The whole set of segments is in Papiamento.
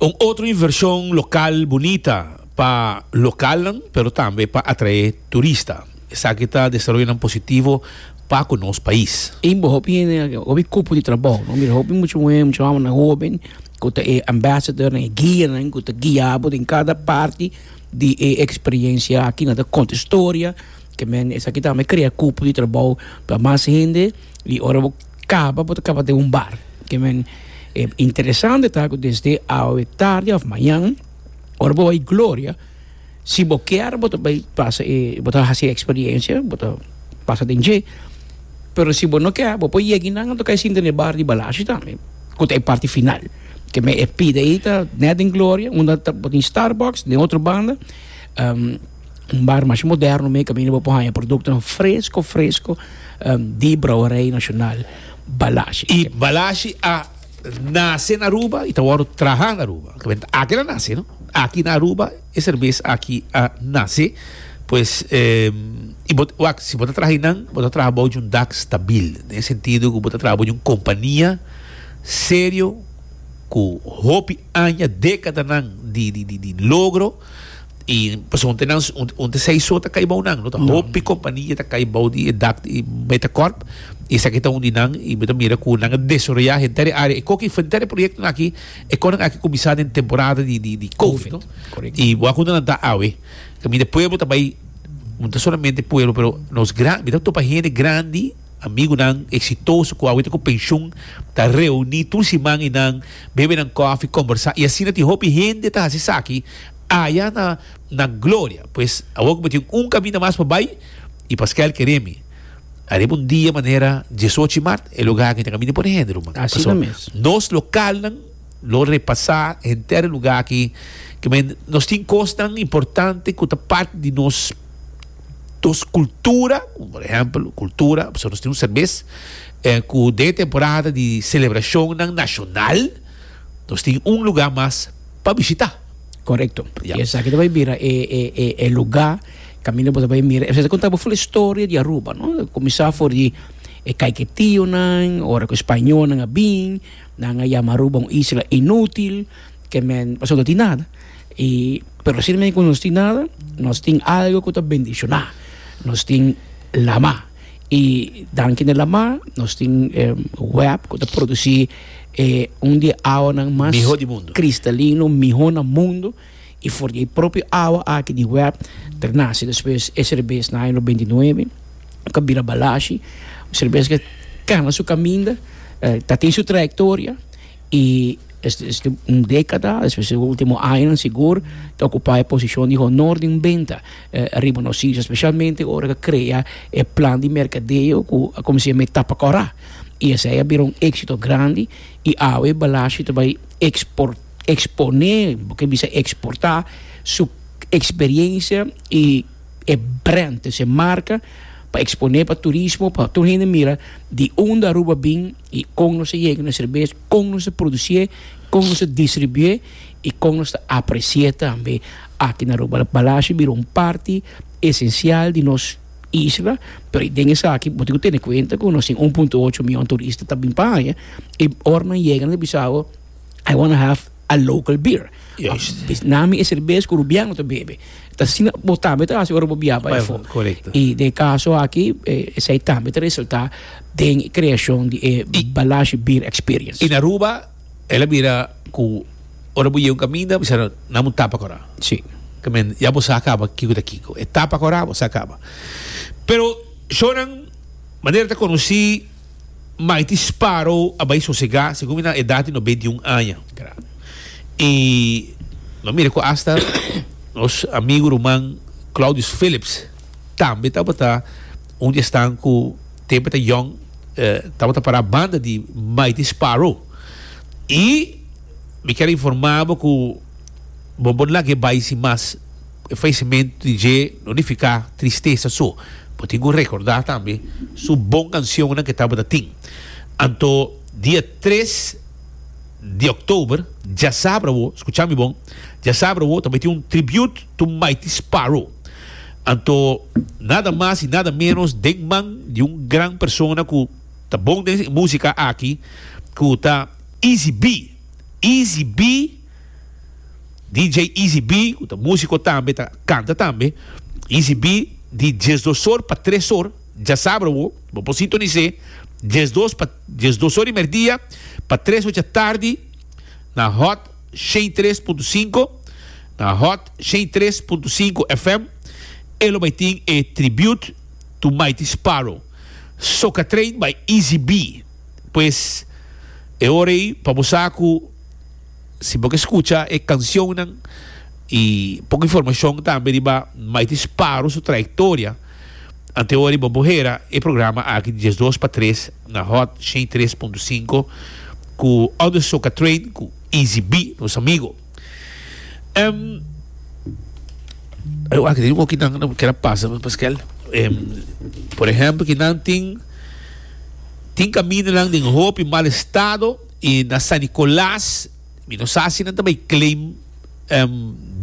Un otro inversion local bunita pa localnan pero tambe pa atrae turista. Esaki ta desaroyonan positivo pa cu nos pais. Tin bo hopi hende aki, hopi cupo di trabou, no? Mira, hopi mucha muher, mucha wamana hoben cu ta e ambassadornan, e guianan cu ta guia bo den cada parti di e experiencia aki. Nan ta conta storia, ke men esaki tambe crea cupo di trabou pa mas hende y ora bo. Caba bo ta caba den un bar. Kimen e interesante ta cu desde awe tarde of mañan ora bo bay Gloria si bo kier bo ta bay pasa e bo ta haci e experiencia bo ta pasa den dje pero si bo no kier bo por yegi nan a toca e sinta den e bar di Balashi tambe cu ta e parti final kimen e pida ayi ta net den Gloria unda ta bo tin Starbucks den otro banda. un bar masha moderno mi caminda bo por haya productonan fresco fresco di brouwerij nacional Balashi. Y Balashi a nace na Aruba y ta worde traha na Aruba. Aki el a nace no, aki na Aruba e cerveza aki a nace pues y bo wak si bo ta traha einan bo ta traha bou di un dak stabil den e sentido cu bo ta traha bou di un compania serio cu hopi aña decadannan di logro. I pasobra un te seis so ta kai bou nan. No ta hopi kompania ta kai bou di e dak di Metacorp. I esaki ta un di nan. I bo ta mira ku nan a desaroyá henter e área. E kok ei henter e proyektonan aki e kòrnan aki kuminsá den temporada di covid, no? I bo a konta nan ta awe. Kaminda pueblo ta bai, no ta solamente pueblo, pero nos gran, mi ta topa hende grandi. Amigunan eksitoso ku awor ta ku penshun ta reuní tur siman i nan bebe nan kòfi, kombersá i asina tin hopi hende ta hasi esaki aya na na Gloria. Pues awor ku mi tin un kaminda mas pa bai i Pasquel kere mi ariba un dia manera diesochi mart e lo ga aki ta kaminda pone hende ruman. Paso nos lokalnan lo repasá henter e lugá aki, ke nos tin kosnan importante ku ta parti di nos. Dos cultura, por ehempel cultura, pasobra nos tin un serbes cu den e temporada di celebracionnan nacional nos tin un lugar mas pa bishita. Correcto. Y esaki ta bay bira e lugar caminda bo ta bay mira. Esaki ta conta bo full historia di Aruba, no? Ta cuminsa for di e caiketionan, ora cu e spañolnan a bin, nan a yama Aruba un isla inutil. ke men pasobra no tin nada i pero si men ku nos tin nada nos tin algu ku ta bendishoná nos tin lamá i danki na lamá nos tin wèp ku ta produsí e un di e awanan mas Mihó di mundu. kristalino mihó na mundu i for di e propio awa aki di wèp ta nase despues e serbes na año benti nuebe ku a bira balashi un serbes ku a kenda su kaminda ta tin su trayektoria. I este un dékada, despues e último añanan sigur, ta okupá e posishon di honor den benta riba nos isla, spesialmente ora ku a krea e plan di merkadeo ku a kuminsá met tapa kòrá. I esei a bira un éksito grandi i awe Balashi ta bai ekspor eksponé, bo ke bisa eksportá, su eksperiensia i e brènt, esei marka, pa eksponé pa turismo, pa tur hende mira di unda Aruba bin. y con nos ta yega na cerveza, con nos ta producie, con nos ta distribue y con nos ta aprecie tambe aki na Aruba. Palacio bira un parti esencial di nos isla, pero y den esaki bo tin cu tene cuenta cu nos tin un punto ocho miyon turista ta bin pa aña y ora nan yega nan ta bisa bo I wanna have. a local beer. Juist. Bis na mi e cerveza cu Rubiano ta bebe. Ta asina bo tambe ta haci ora bo biaha pa efo. Correcto. Y den e caso aki, eh, esey tambe ta resulta den e creacion di e Balashi Beer Experience. Y na Aruba el a bira cu ora bo yega un caminda bo bisa nan, nan bo tapa cora. Si. Ta meen, ya bo sa a caba kico ta kico. E tapa cora, bo sa a caba. Pero shownan, manera ta conoci. Mighty Sparrow a bai sosegá segun mi na edat di nos beinti un aña. I nos mira ku asta nos amigu ruman Claudius Phillips tambe tabata un di esnan ku tempu e ta yòn tabata pará banda di Mighty Sparrow. I mi kier informá bo ku bo por lag'é bai sin mas. E faisimentu di dje no nifiká tristesa so. Bo tin ku rekordá tambe su bon kansionnan ku tabata tin. Anto dia tres di òktober djasabra bo, skuchá mi bon, djasabra bo ta mete un tribut to Mighty Sparrow. Anto nada mas i nada ménos den man di un gran persona ku ta bon den e músika aki ku ta Easy B. Easy B. DJ Easy B cu ta musico tambe ta canta tambe Easy B di dies dos or pa tres or dja sabra bo bo por sintonis'e dies dos pa dies dos or di merdia pa tres ocha tardi na Hot shei tres punto sinku na Hot shei tres punto sinku FM e lo bay tin e tribute to Mighty Sparrow Soca Train by Easy B pues e ora ey pa bo sa cu. Si bo ke skucha e kanshonnan i pon informashon tambe riba Mighty Sparrow su trayektoria ante ora i bo por hera e programa aki di dies dos pa tres na Hot shen tres punto sinku ku Under Soca Train ku Easy B, nos amigo. Ayo aki tin un hopi nan nan keda pasa mi paskel. Por ehempel kinan tin tin kamindanan den hopi mal estado. E na San Nicolas mi no sa si nan ta bay claim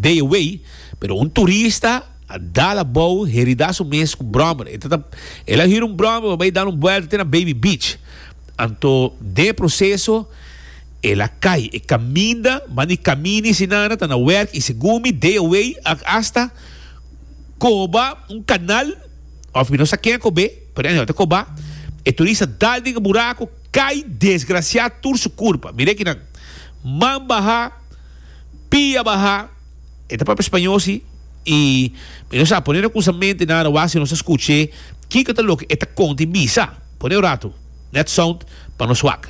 day away pero un turista a dal abou herida su mes cu brommer. E ta el a hira un brommer pa bay dal un buelta te na Baby Beach. Anto den e proceso el a cay. E caminda manda e camina y si nana ta na werk y segun mi day away a hasta coba un canal of mi no sa ken a cob'e pero anyhow ta coba. E turista dal den e buraco. Cai desgracia tur su curpa. Mira ekinan. Man baha, pia baha, e ta papia spañó si, i mi no sa, pone no cusa mente nan arawá si nos ta scuche kico ta loke e ta conta i bisa. Pone un ratu, net sound pa nos wak.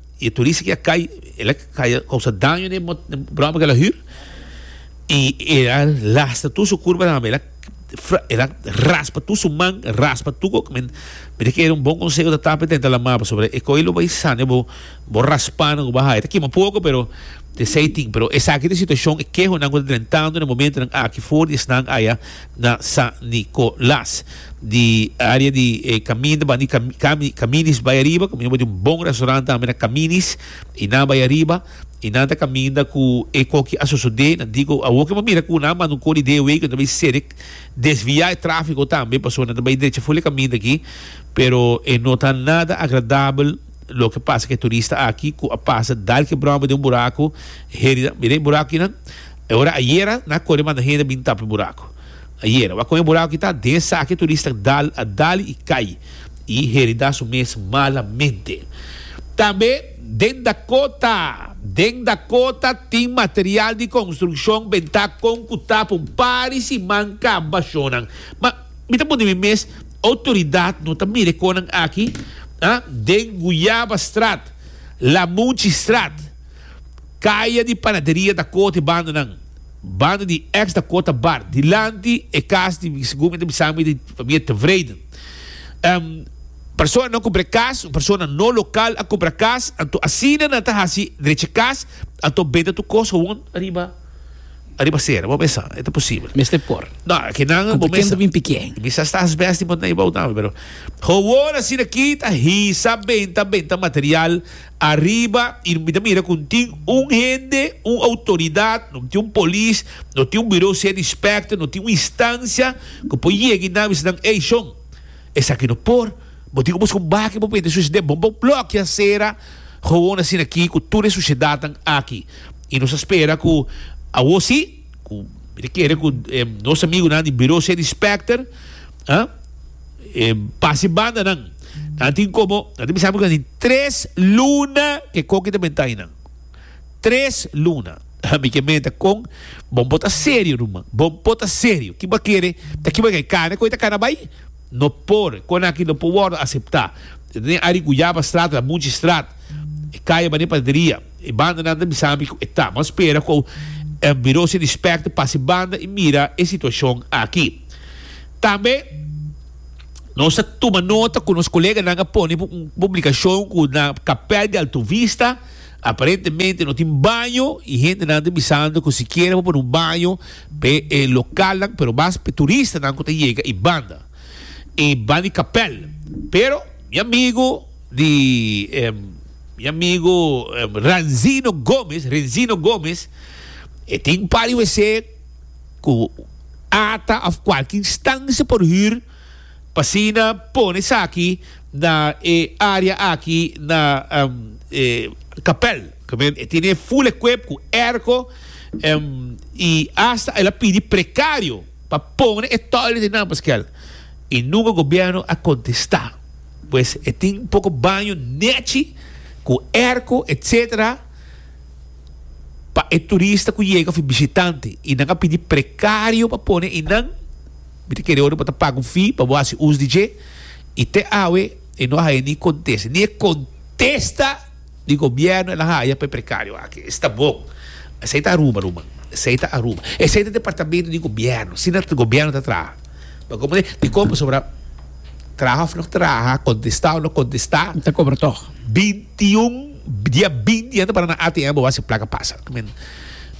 Y e turista que a cay, el a cay a causa daño na e broma que el a huur. Y e a lastra tur su curpa tambe. El a el a raspa tur su man, raspa tur cu men mira que era un bon conseho ta tapa y ta entra la maba. Pasobra e coye lo bay sane bo, bo raspa nan cu bo haya. Ta kima poco pero te say thing. Pero esaki ta e situacion, e kehonan cu ta drentando na e momentonan aki for y esnan aya. na San Nicolas di area di caminda ban di cami caminis bay ariba caminda bay di un bon restaurant tambe na caminis y nan bay ariba y nan ta caminda cu e coki a sosode nan dico awo kiman mira cu nan a manda un cor di de way cu nan ta bay serek desvia e trafico tambe pasobra nan ta bay derecha full e caminda aki pero e no ta nada agradabel loke pasa cu e turista aki cu a pasa dal kebromba den un buraco heri mira e buraco kinan. E ora ayera na kore manda hende bin tapa e buraco. Ayera, wak con e buraco ki ta den esaki e turista a dal y cay y herida su mes malamente. Tambe den Dakota, Den Dakota tin material di construccion ben ta con cu tapa un pari siman caba shonan. Ma mi ta punti mi mes, autoridad no ta mira e conan aki? Den Guyaba Straat, Lamunci Straat, Kaya di panaderia ta koto e bandonan. Bando di eks ta kota bar dilanti e kas di mi segun mi ta bisa mi di famia Tevreden. Personanan kumpra e kas, un persona no lokal a kumpra kas, anto asina nan ta hasi drecha e kas, anto benta tur kos gewoon ariba ariba sera, bo mesa e ta posibel. Mester por. No, ke nan Anto bo ken mesa ta bin pikié? mi sa sta asbest di bo ta na e bou tambe, pero gewoon asina kita hisa benta benta material. Ariba y mi ta mira cu tin un hende, un autoridad, no tin un polis, no tin un bureau ser inspector, no tin un instancia cu por yega y nabi esnan ey shon, esaki no por, bo tin cu bo busca un baki pa bo mete sociedad, bo bo blokia acera, gewoon asina aki cu tur e sociedadnan aki y nos a spera cu awo si, cu mi ta kere cu nos amigunan di bureau ser inspector, ah. e basi banda nan a tin komo a tin bisa asin tres luna ke koki ta menta ainan tres luna ami ke menta kon bon bo ta serio ruman bon por ta serio ki bo a kere ta kiba ke kane ku e ta kana bai no por kon aki no por wordo asepta ta tene ari ku yaba strato a muchi strat e kaye bani pateria e banda nan ta bisa ami ku e ta bo a spera ku e biro sin respecto pasi banda i mira e situashon aki. Tambe nos ta tuma nota ku nos koleganan a pone un publikashon ku na Kapèl di Altuvista aparentemente no tin baño i hendenan ta bisando ku sikiera por pone un baño p'e lokalnan pero mas p'e turistanan ku ta yega i banda i ban di Kapèl. Pero mi amigu di mi amigu Ranzino Gomez, Renzino Gomez, e tin un par di wc. ku ata òf kualki instancia por hür pa asina pone esaki na e área aki na e kapèl. E tene e full equip ku èrko i asta el a pidi prekario pa pone e toilet den nan paskel i nunka gobièrnu a kontestá. Pues e tin poko baño nèchi ku èrko etsetera. pa e turista ku yega of e bishitante i nan a pidi prekario pa pone einan. Mi ta kere ora bo ta paga un fee pa bo hasi us di dje i te awe e no a haya ni kontesta, ni e kontesta di gobièrnu el a haya pa e prekario aki. Esta bon. Esei ta Aruba, ruman. Esei ta Aruba. Esei ta departamentu di gobièrnu. Asina gobièrnu ta traha. Lo como te dicon pasobra traha of no traha, contesta of no contesta, Mi ta cobra tog. binti y un dia binti hende para na ATM bo haci placa pasa. I mean,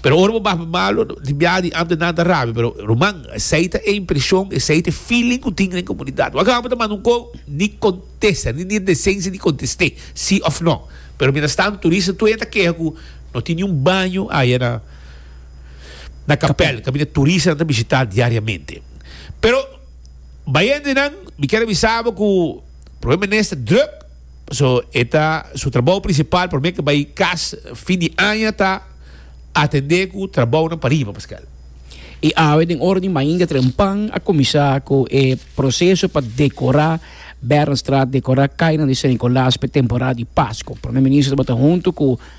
pero ora bo baha pa Malo di biaha di Amter nan ta rabia, pero ruman esey ta e impresion, esey ta e feeling cu tin den comunidad. Wak Amter ta manda un co ni contesta, ni tin decencia di conteste si of no. Pero mientras tanto turista todavia ta keha cu no tin ni un baño aya na. na kapèl kaminda turisnan ta bishitá diariamente. Pero bayendenan mi kier a bisa bo ku Prome Minister drùk, paso e ta su trabou prinsipal promé ke bai kas fin di aña ta atendé ku trabounan pa riba, Pascal. I awe den ora di mainga trempan a kuminsá ku e proseso pa dekorá Bernstraat, dekorá kainan di Sint Nikolaas pa e temporada di Pasko. Prome Minister tabata huntu ku.